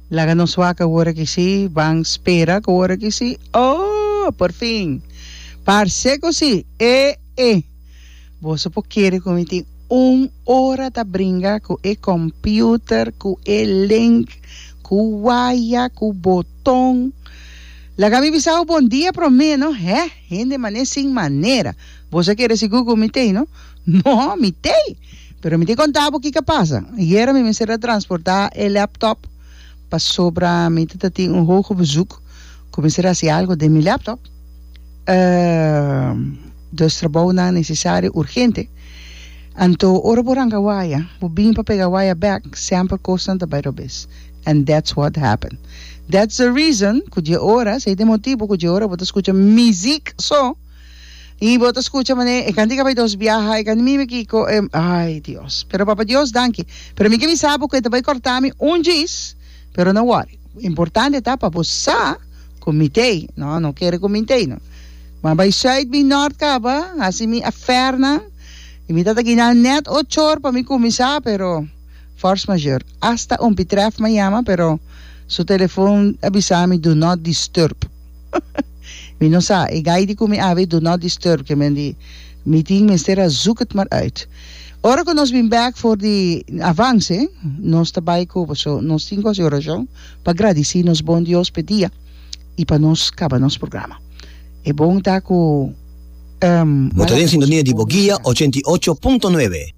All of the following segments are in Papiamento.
Laga nos waka wor aki si, ban spera cu wor aki si, oh! Por fin! Parce cu si, ee! Boso por kere cu mi tin un ora ta bringa cu e computer, cu e link, cu waya, cu boton. Laga mi bisa bo bon dia prome, no? Heh! Hende mane sin manera! Boso a kere sigur cu mi t'ey, no? No, mi t'ei. Pero mi tin contá bo kico a pasa. Ayera mi mester a transportá e laptop pasobra mi ta ta tin un hoge bezoek cu mester a haci algo den mi laptop. Dos trabounan necesario urgente. Anto ora bo ranga waya, bo bin pa pega waya bek, semper cosnan ta bai robes. And that's what happened. That's the reason cu dje ora, esei ta e motibo cu dje ora bo ta scucha mi ziek so. Y bo ta scucha manera e cantica bay dos biaha e can mimi kico e ay Dios. Pero Papa Dios danki. Pero mi ke bisa bo cu e ta bay corta mi un djis pero no worry. Importante ta pa bo sa cu mi tey no no kere cu mi tey no. Bo a bay Zuid bin Noord caba haci mi affair nan y mi ta taki nan net ochor pa mi cuminsa pero force majeur. Hasta un pitref ma yama pero su telefoon a bisa mi do not disturb. Mi no sa, e gai di cu mi abi do not disturb ke men di mi tin mester a zoek het maar uit. Ora cu nos bin bek for di avance, nos ta bai cu paso nos tin gosi oracion pa gradici nos bon Dios p'e dia y pa nos caba nos programa. E bon ta cu, ehm, Bo ta den sintonia di Boguia ochenta i ocho punto nuebe.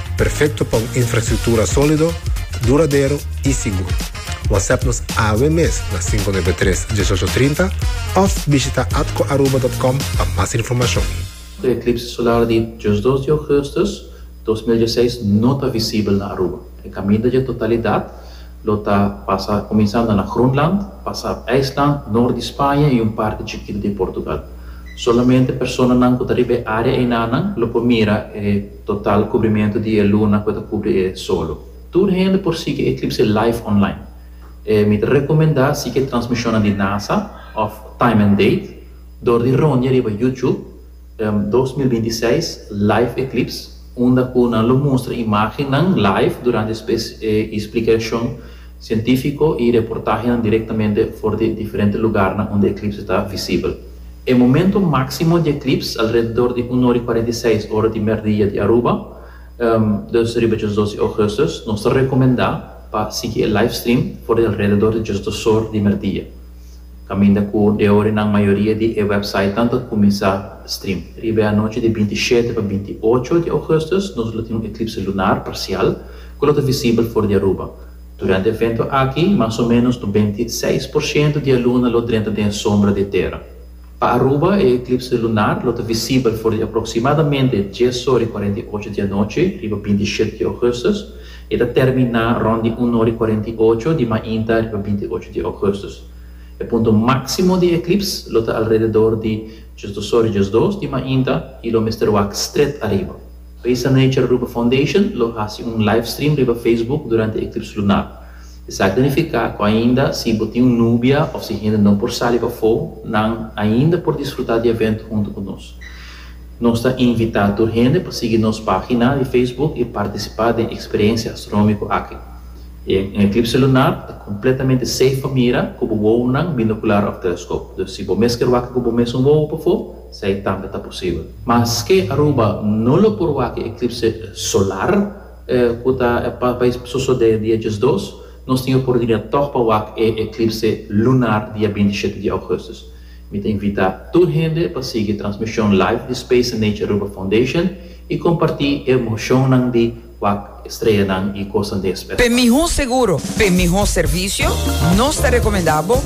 Perfecto pa un infrastructura solido, duradero y sigur. WhatsApp nos awe mes na cinco nuebe tres, dieshocho trinta of bishita atcoaruba.com pa mas informacion. E eclipse solar di diosdos di augustus dos mil dieseis no ta visibel na Aruba. E caminda dje totalidad lo ta pasa cuminsando na Groenland, pasa ap IJsland, noord di Spaña y un parti chikito di Portugal. Solamente personanan cu ta riba e area einanan lo por mira e. Total kubrimentu di e luna ku e ta kubri e solo. Tur hende por sigui e eklipse live online. E mi ta rekomendá sigui e transmishonnan di nasa òf Time and Date dor di roñe riba YouTube dos mil binti seis live eclipse unda ku nan lo mustra imágennan live durante e splikashon sientífiko i reportahenan direktamente for di diferente lugarnan unda eklips ta visibel. E momentu máksimo di eklips alrededor di un ora i kuarenta i seis ora di mèrdia di Aruba, dus riba djos dos di ougùstus. Nos ta rekomendá pa sigui e livestream for di alrededor di djos dos or di mèrdia. kaminda ku de ora nan mayoria di e wèpsait tantu a kuminsá stream. Riba e anochi di binti shete pa binti ocho di ougùstus nos lo tin un eklipse lunar parsial ku lo ta visibel for di Aruba. Durante e evento aki, mas o ménos benti seis por shento di e luna lo drenta den e sombra di e tera. Pa Aruba e eklipse lunar lo ta visibel for di aproksimadamente dies ora i kuarenta i ocho di anochi riba binti i shete di ougustus i e ta terminá rònt di un ora i kuarenta i ocho di mainta riba binti i ocho di ougustus. E punto máksimo di e eklips lo ta alrededor di djes dos ora i djes dos di mainta i lo mester wak stret ariba. Risa Nature Aruba Foundation lo hasi un livestream riba Facebook durante e eklips lunar. Esaki nifiká ku ainda si bo tin un nubia òf si hende no por sali pafó, nan ainda por disfrutá di evento huntu ku nos. Nos ta invitá tur hende pa sigui nos página di Facebook i partisipá den eksperensia astronómiko aki. E un eklipse lunar ta kompletamente seif pa mira ku bo wounan, binokular òf teleskop. Dus si bo mes kier wak ku bo mes un wou pafó, sa e tambe ta posibel. Maske Aruba no lo por wak e eklipse solar, E ku ta bai sosodé dia diesdos, nos tin oportunidat tòg pa wak e eklipse lunar dia binti i shete di ougùstus. Mi ta invitá tur hende pa sigui transmishon live di Space and Nature Aruba Foundation i kompartí e emoshonnan di wak e streanan i kosnan den e spes. P'e mihó seguro, p'e mihó servisio, nos ta rekomendá bo.